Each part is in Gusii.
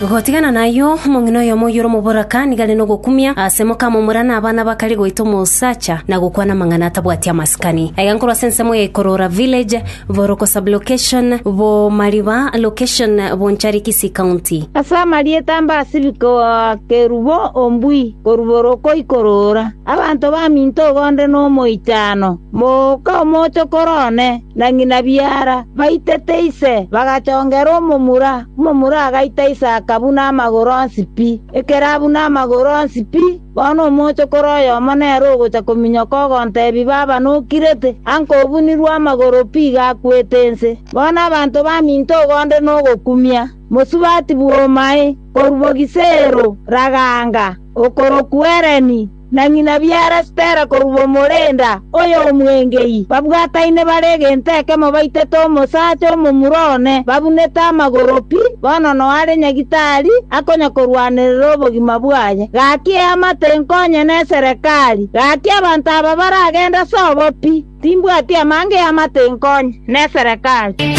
Gotigana nayio, omong'ina oyomo oyore omoboraka nigo are nogokumia ase mokamomura na abana bakare goita omosacha na gokwana amang'ana atabwati amasikani. Aiga nkorwa ase ensemo ya Ikorora Village, Boroko Sub-Location, Bomariba Location, Bonchari Kisii County. Ase amarieta a Mbasibi koa Kerubo Ombui korwa Boroko Ikorora, abanto baminto igo nde nomoichano, moka omochokoro one. na ng'ina biara baitete ise, bagachongera omomura, omomura agaita ise akabuna amagoro onsi pi. Ekero abuna amagoro onsi pi, bono omochokoro oyomo nere ogocha kominyoka ogontebia baba nokirete, ango obunirwe amagoro pi iga akwete inse. Bono abanto baminto ogonde nogokumia, mosubati bw'omoae, korwa Bogisero, Raganga, okorokwa Ereni, na ng'ina biara Stella korwa omorenda oyo omwengei, babwataine bare egento ekemo baitete omosacha omomura one, babunete amagoro pi, bono noare nyagitari akonya korwanerera obogima bwaye. Gaki eamate enkonye neserekari, gaki abanto aba baragende ase obo pi. Timbwati amange amate inkonye, neserekache.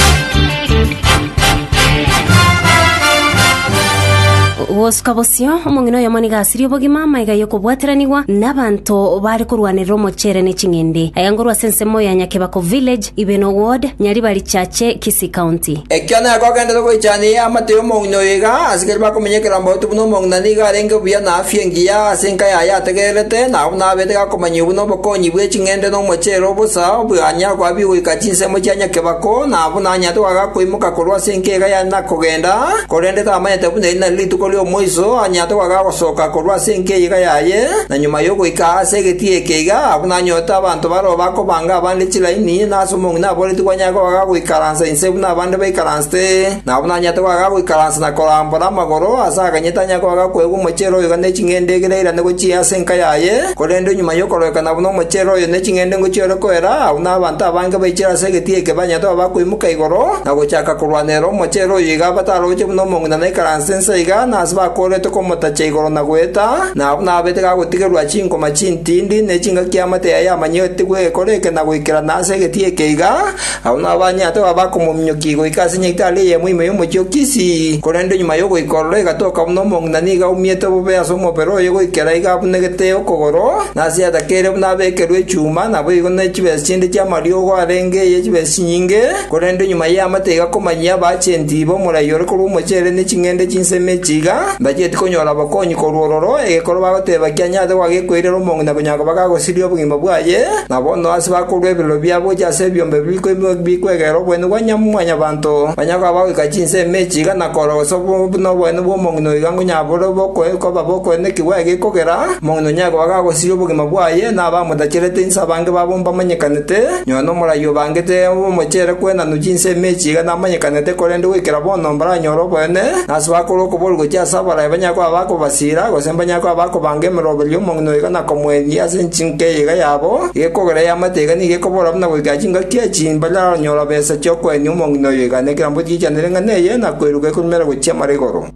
Gosuka bosio, omong'ina oyomo nigo asirie obogima amo aiga y'okobwateranigwa nabanto baare korwanerera omochere ne ching'ende. Aiga ngorwa ase ensemo ya Nyakebako Village, Ibeno Ward, Nyaribari Chache, Kisii County. Ekio nako agenderete goichania eye amate y'omong'ina oyo iga asigere bakominyekerera mbauti buna omong'ina nigo arenge buya na afya engiya ase enka yaye ategererete, nabo buna abeete gakomanyiwa buna obokonyi bwe ching'ende. Ng'ende nomochero o bosa obwanyare koabia goika chinsemo chia nyakebako, na abwo nanyarete goaka koimoka korwa ase enkiega yane na kogenda, korende tamanyete buna eri nari rituko ri'omoiso anyarete goaka gosoka korwa ase enkiega yaye, na nyuma y'ogoika aa ase egetigei eke iga, abwo nanyorete abanto bareo bakobanga abande chiraini, na ase omong'ina aboretie kwanyare goaka goikaransa inse buna abande baikaransete, na abwo nanyarete goaka goikaransa na korambora amagoro, ase akanyete anyare goaka koegwa omochero oyo iga ne ching'ende egere airane gochia ase enka yaye, Korende nyuma y'okororekana buna omochere oyo ne ching'endengo chiore koera, agwo nabanto abange baichire ase egetigiri eke banyarete koba bakoimoka igoro, na gochaka korwanerera omochere oyio iga bataroche buna omong'ina naikaranse inse iga, na ase bakoorete komotacha igoro na goeta, na abwo nababete gagotigerwa chinkoma chintindi, ne chingaki y'amate yaye yamanyegetigwe egekore eke na goikerana ase egetigiri eke iga, Agwo nao banyaate babo bakomominyokia goika ase nyaitari eyemo ime y'omochie o Kisii, korende nyuma y'ogoika ororo egatoka buna omong'ina na nigo aumiete bobe ase omobere oye goikera iga abunegete okogoro, na ase yatakeire buna abekerwe echuma, naboigo ne chibesa chinde chi'amariogo arenge eye chibesa chinyinge, korende nyuma y'eamate igakomanyia abaagenti b'omorai ore korwa omochere ne ching'ende chinsemi echi iga mbachieti konyora obokonyi korwa ororo, egekoro bagoteba kianyaate goa gekoirera omong'ina konya koba gagosiria obogima bwaye, Na bono ase bakorua ebirero biabo gochia ase ebiombe bibiri riko ime bikwegerera oboene bwa Nyamwanyabanto, banyare koba bagoika chinsa ime echi igana korora gose buna oboene bw'omong'ina oyo iga ngonyabore koba bokoenekigwa egekogera, omong'ina onyare koba gagosiria obogima bwaye na abamotacherete inse abange babo mbamanyekanete, nyuma n'omorai obangete omochere kwenanu chinsa ime echi iga namanyekanete korende goikera bono mbaranyore oboene, na ase bakorua okoboria gochia ase abaraai banyare koba bakobasiira gose mbanyare koba bakobanga emeroberio y'omong'ina oyo iga nakomoenia ase Eyega yabo igekogera eamate eyega nigo ekobora buna goika chingaki echi mbaranyora besa chi'okoenia omong'ina oyo eyega, na ekerambe otigeichanere ng'a neye, na koiruka ekorumera gochia mara igoro.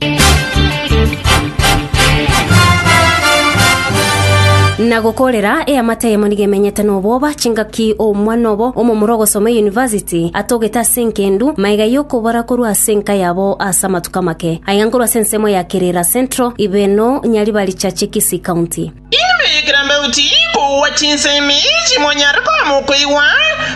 Na gokorera eamate eyemo nigo emenyete nobwoba, chingaki omwana obo omomura ogosoma eyunivasiti atogete ase engendu, maega y'okobora korwa ase enka yabo ase amatuko amake. Aiga nkorwa ase ensemo ya Kiriira Central, Ibeno, Nyaribari Chache, Kisii County. Inwe ekerambauti kogwa chinsemi chimonyare koema okoigwa,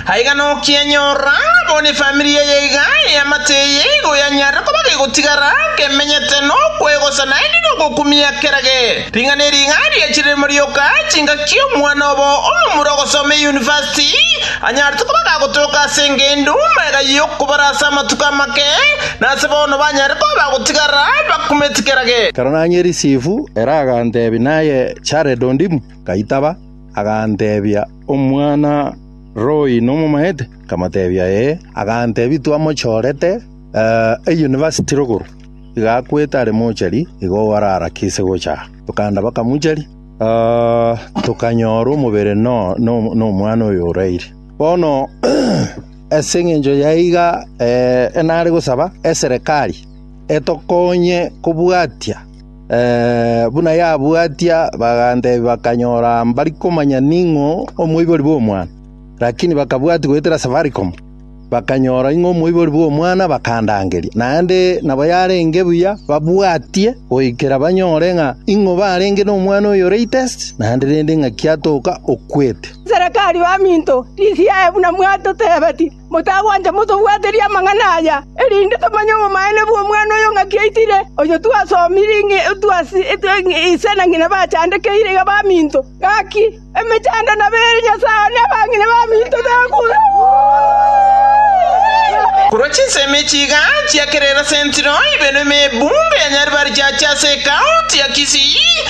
aiga nokianyorora ng'a bo nefamiri eye iga eamate eye igo yanyare koba gegotigara gemenyete nokwegosa naende nogokumia kerage ring'ana eri iga riachirire morioka chingaki omwana obo omomura ogosoma eyunivasiti anyarete koba gagotoka ase engendu magega y'okobara ase amatuko amake Nase bono banyare koba gotigarera abakumeti kera gento. Ekero nanyie risifu ere aganteebia, Naye Jared ondimu? Ngaitaba, aganteebia, Omwana Roy nomomaete? Nkamoteebia, Ee. Aganteebia, Twamochorete eyunivasiti rogoro, iga akwete are mochari, igo orarakise gocha aa. Tokaanda bakamocharia, tokanyora omobere nomwana oyo oraire. Bono Ase engencho yaiga nare gosaba eserekari etokonye kobwatia buna yabwatia, bagantebia bakanyora mbari komanya ning'o omoibori bw'omwana, lakini bakabwatia goetera Safaricom bakanyora ing'o omoibori bw'omwana bakandangeria. Naende nabo yarenge buya babwatie goikera banyore ng'a ing'o barenge nomwana oyo latest naende rende ng'aki atoka okwete. Inserekari baminto, rigiya aye buna mwatotebeti, motagwancha motobwaterie amang'ana aya, erinde tomanye obomaene bw'omwana oyo ng'aki aitire, oyo twasomire ng'a ise na ng'ina bachandekeire iga baminto. Gaki, emechando nabe ere Nyasae one abang'ina baminto tebakure!” Korwa chinsemo echi iga chiakerera sentiro ibere na ebumbe ya Nyaribari chiachia ase ekaunti ya Kisii.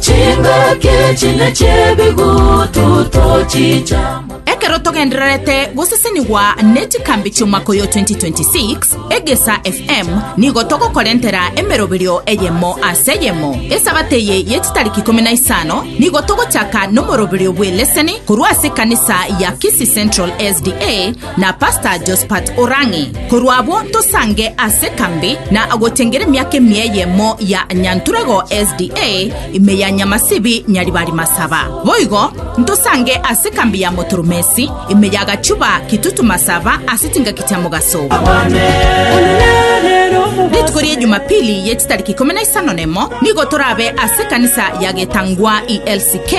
Chingaki chine chi'ebigututu chichamo. Ekero togendererete gosesenigwa ne chikambi chi'omwaka oyo 2026, Egesa FM nigo togokorentera emeroberio eyemo ase eyemo. Esabato eye ye chitariki ikomi na isano nigo togochaka nomoroberio bw'eleseni korwa ase ekanisa ya Kisii Central SDA na Pastor Jospat Orang'i, korwa abwo tosange ase kambi na agotengera emiaka emia eyemo ya Nyanturego SDA ime ya Nyamasibi Nyaribari Masaba. Boigo ntosange ase kambi ya Motoromesi ime ya Gachuba Kitutu Masaba ase chingaki chia mogaso. Rituko ria Jumapili ye chitariki ikumi na isano na emo nigo torabe ase ekanisa ya Getangwa ELCK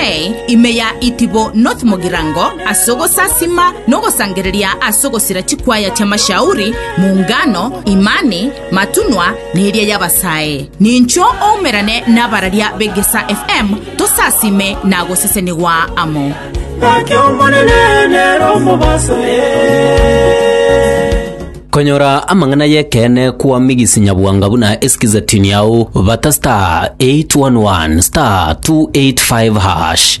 ime ya Itibo North Mogirango Ase ogosasima na ogosangereria ase ogosira chikwaya chi'amashauri, mungano, imani, matunwa, na eria y'abasae. Nincho oumerane nabararia b'Egesaa FM tosasime na gosesenigwa amo. Gaki Omonene nere omobaso Konyora amang'ana y'ekeene kwamigisi nyabwanga buna esikize tini yao bata star 811 star 285 hash.